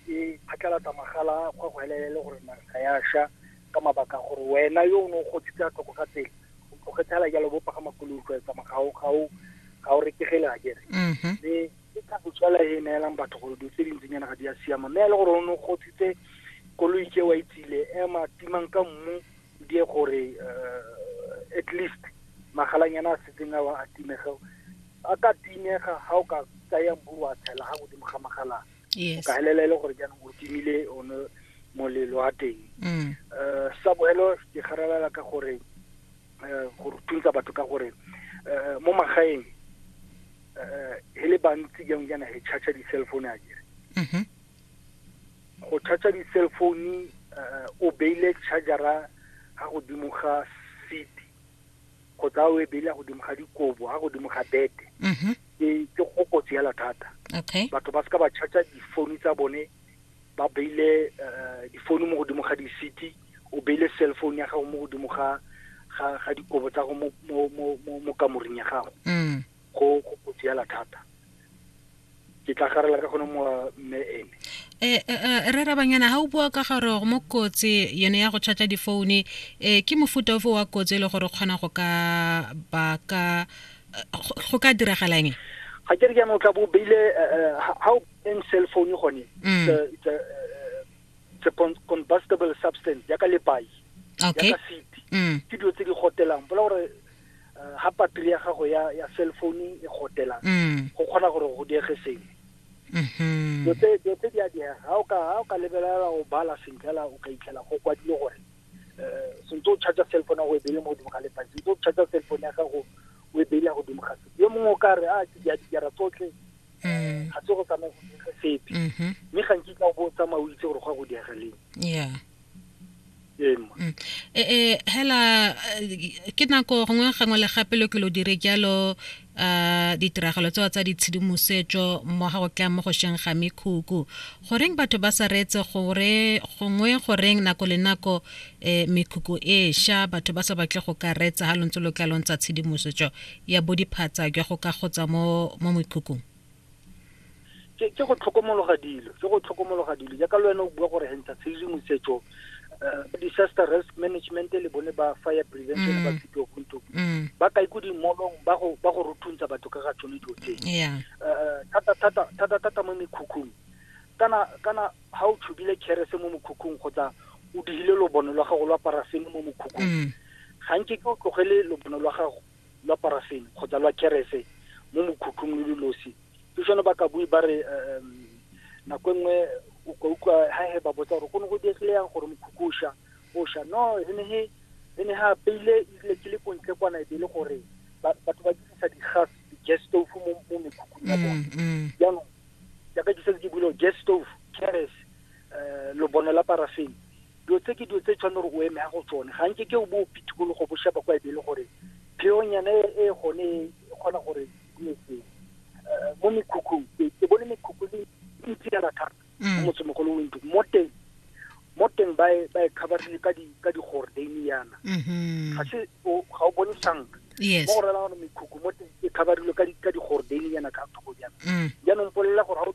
e phatlalatsa magala go go helelele gore naga ya sha ka mabaka gore wena yo o ne o gotsitse a tlhoko ga tsela o tlogetse ala jalo bo pagama koloi go etsa magao gao ga o retegele a kere mhm. mme ke ka botswala e neelang batho gore dilo tse dintsinyana ga di a siama mme ya le gore o ne o gotsitse koloi ke wa itsile ema timang ka mmu die gore eh, at least magalanyana a setseng a wa a timega a ka timega ga o ka tsaya mbu wa tshela ga godimo ga magalana yes. ka helela e le gore jaanong o timile one molelo wa teng um sa boelo ke garalela ka gore um gore thuntsa batho ka gore um mo magaeng um e le bantsi jang jaana he charge di-cell phone a kere mhm. go charge di-cell phone um o beile chargera ga godimo ga seat go tsaya o e bele ya godimo ga dikobo a godimo ga bete mhm. ke go kotsi yala thata batho ba seka ba charger difounu tsa bone ba beile eh, difounu mo godimo ga di-city o beile cell phone ya gago mo godimo ga ga dikobo tsa go mo kamoring ya gago mm. go go kotsi yala thata ke tla garela ka gone mowa mme ene eh, eh, eh, re rabanyana ga o bua ka gore mo kotsi yone ya go charge difoune um ke mofuta ofe wa kotsi e le gore kgona go ka baka go ka diragalang ga ke re jaanong o tla bo beile ga o eng cell phone gone mm. it's a combustible substance yaka lepai yaka seat mm. ke dilo tse di gotelang bola gore uh, ha patri ya gago ya ya cell phone e gotela mm. go kgona gore go diege sengwe mm-hmm. dilo tse di a diega ga o ka ga o ka lebelela go bala sentle la o ka itlhela go kwadile gore um sentse o charge cell phone ya go e beile mo godimo ga letsatsi sentse o charge cell phone ya gago o e beile ya godimo ga setse yo mongwe o ka re a ah, ke dia dijara tsotlhe mm. ga se go tsamaya go diege sepe mm-hmm. mme gantsi ka o bo o tsamaya o itse gore go ya go diege leng ee mma mm. e, e, hela eh, ke nako gongwe gangwe le gape lo ke lo dire jalo a ditiragalo tsewa tsa ditshedimosetso mo ga go tla mo go sheng ga mekhukhu goreng batho ba sa reetse gore gongwe goreng nako le nako um mekhukhu e sha batho ba sa batle go ka reetsa ga lontse lo tla lontsa tshedimosetso ya bodiphatsa jwa go ka kgotsa mo mekhukhung ke ke go tlhokomologa dilo ke go tlhokomologa dilo jaaka le wena o bua gore hentsa tshedimosetso uh, disaster risk management le bone ba fire prevention mm. ba fito kunto mm. ba ka iku dimolong ba go ba go ruthuntsha batho ka ga tsone dilo tse yeah. uh, thata thata thata thata mo mekhukhung kana kana ha o tshubile kherese mo mokhukhung kgotsa o digile lobono lwa gago lwa parafene mo mokhukhung mm. ga nke ke o tlogele lobono lwa gago lwa parafene kgotsa lwa kerese mo mokhukhung lo lo losi ke jone ba ka bue ba re um nako e nngwe o ka utlwa ha he ba botsa gore go ne go diegile yang gore mokhukhu o sha o sha no e ne he e ne ha peile ile ke le kontle kwana e be le gore batho ba dirisa di-gas di-gas stove mo mo mekhukhung ya bone mm, mm. jaanong jaaka ke setse ke bule gas stove keres um eh, lobono la parafene dilo tse ke dilo tse tshwane gore o eme ya go tsone ga nke ke o bo pitikologo bo sheba kwa ebele gore pheonyana e, e gone e kgona gore e eh, mo mekhukhung ke bone mekhukhu le ntsi ya lathata mm. mo motsemogolo o ntlo mo teng mo teng ba e, e khabarile ka digordane yana mm-hmm. ga se ga o bone sanka mo go rela gore mekhukhu mo teng e khabarilwe ka digordane yana ka thoko yana mm. jaanong polelela gore ga o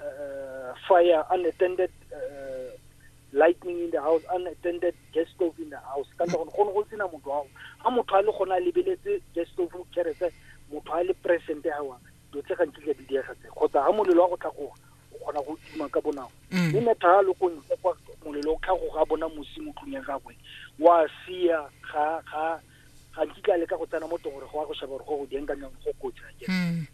uh, fire unattended uh, lightning in the house unattended gas stove in the house ka ntle gone gone go sena motho ao ga motho a le gone a lebeletse gas stove kerese motho a le present awa dilo tse gantsi tla di diega tse kgotsa ga molelo wa go tlhagoga o kgona go tima ka bonako mm. mme metha a le ko ntle kwa molelo o tlhagoga bona mosi mo tlong ya gagwe wa sia ga ga ga nkitla le ka go tsena mo tongore go ya go sheba gore go go dieng ka nyang go kotsi a ke mm.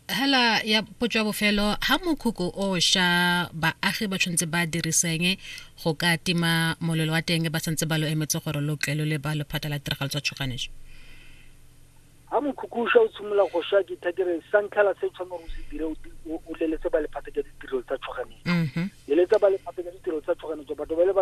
hela ya potso ya bofelo ha mokhukhu o sha baagi ba tshwanetse ba diriseng go ka tima molelo wa teng ba santse ba lo emetse gore lo tle lo le ba lephata la tiragalo tsa tshoganetso ha mokhukhu o sha o tshimolola go sha ke thakere sa ntlha la se tshwanetse go se dire o leletse ba lephata ke ditirelo tsa tshoganetso mm-hmm. leletsa ba lephata ke ditirelo tsa tshoganetso batho ba le